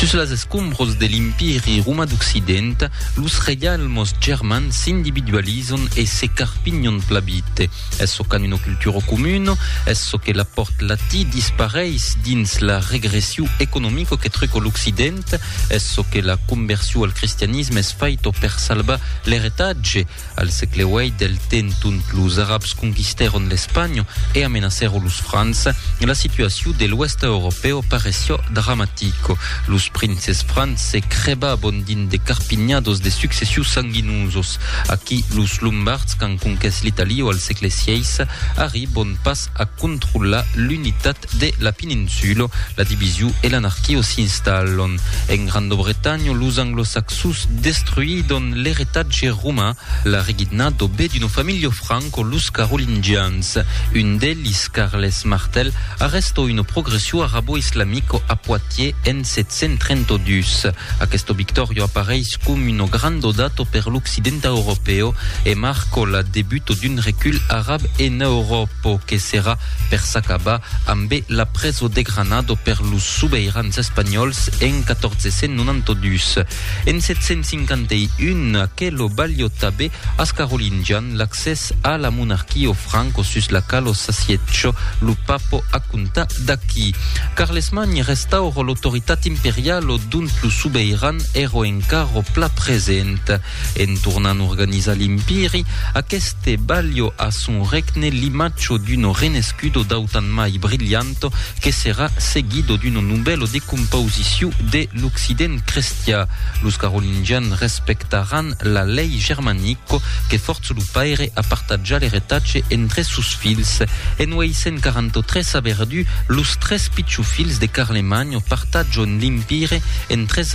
Sus las escombros de l'Empiri romà d'Occident, los reialmes germans s'individualizan e se carpinhan pla vite. Es çò qu'an una cultura comuna, es çò que l'apòrt latí dispareis dins la regressiu economica que truca l'Occident, es çò que la conversion al cristianisme es faita per salvar l'eretatge, Al sègle viii del temps ont los arabs conquistèron l'Espanha e amenacèron los francs, la situacion de l'Oèst europèu pareció dramatica. Los princes francs se crèbabon dins de carpinhados de successions sanguinoses. Aquí los lombards qu'an conquès l'Italia al sègle xvi arribon pas a controlar l'unitat Estates de la Pininsulo, la division e l'anarquio s'installon. En Grando-Bretanha, los Anglo-Saxos destruidon l'eretatge romain, la regidna do be d'una familha franco los Carolingians. Un d'elis, Carles Martel, arrestò una progressio arabo-islamico a Poitiers en 732. Aquesto victorio apareis com uno grando dato per l'occidenta europeo e marcò la debuto d'un recul arab en Euròpo que serà per s'acabar ambe la preso de Granado per los sobeirans espanhòls en 1492. En 751, aquelo balhotàbe as carolingians l'accès a la monarquia o franco sus la qual o s'assietjò lo papo a comptar d'aqui. Carlesmagn restauro l'autoritat imperial o dont lo sobeiran èro encara o pla present. En tornant organizar l'Impiri, aqueste balho a son regne l'imatjo d'uno renescudo d'autant mai brilhanto que serà seguido d'uno nubèlo de compausiciu de l'Occident crestiá. Los carolingians respectaràn la lei germanico que fòrç lo paire a partatjar l'eretatge entre sos filhs. En 843 a Verdú, los tres pichofilhs de Carlemagno partatjon l'Impire en tres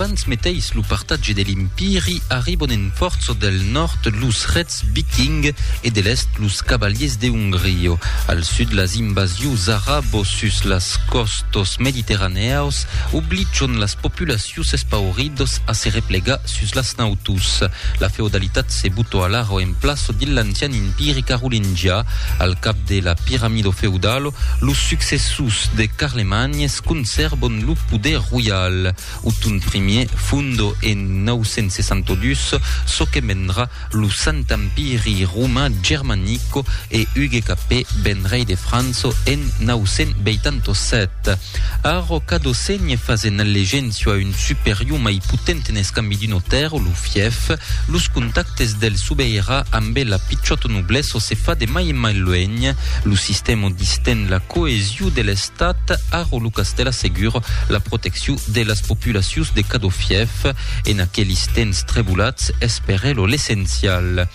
Abans meteis lo partatge de l'Empiri arribon en Fortso del nòrd los rets viking e de l'èst los cavaliers de Hongrio. Al sud las invasius arabos sus las còstos mediterranèaus obligion las populacius espauridos a se replegar Sus las nautus, la feodalitat se butò alara o en plaço dins l'ancian impiri carolingià. Al cap de la piramido feudalo, los successors de Carlemany conservon lo poder roial. Othon Ier fondo en 962 çò que vendrà lo Sant Empiri Roman Germanico e Hugues Capet ven rei de França en 987. A ròca do sègne fas en allegencia a un superior mai potent en escambi d'un otèr o lo fièf. Los contactes del sobeirà ambe la pichòta noblessa se fa de mai en mai luènh. Lo sistèma disten la coesion de l'estat aro lo castèl assegura la proteccion de las populacions de cadó fièf. En aquelis temps trebolats es per elo l'essencial.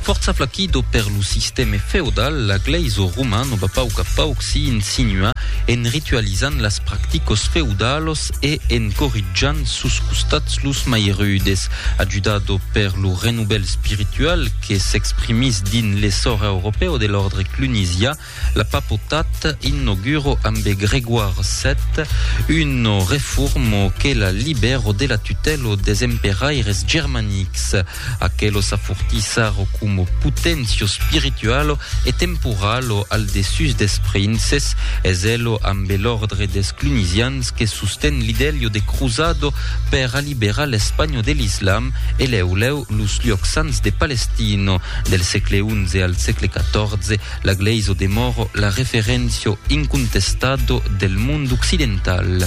Fòrça flaquido per lo sistème feodal, la glèisa romana va pauc a pauc s'i insinuar en ritualizant las practicas feudalas e en corritjant sus costats los mai rudes. Ajudado per lo renovèl spiritual que s'exprimís dins l'essor europèu de l'òrdre clunisiá, La papotat inauguro ambe Grégoire vii una reformo que la libero de la tutèlo des emperaires germanics. Aquelo s'afortissaro como potencio spiritualo e temporalo al dessús des princes, es elo ambe l'òrdre des Clunisians que sosten l'idelio de cruzado per aliberar l'Espanho de l'Islam e lèu lèu los luòcs sants de Palestino. Del sègle xi al sègle xiv, La glèisa demòra la referéncia incontestada del mond occidental.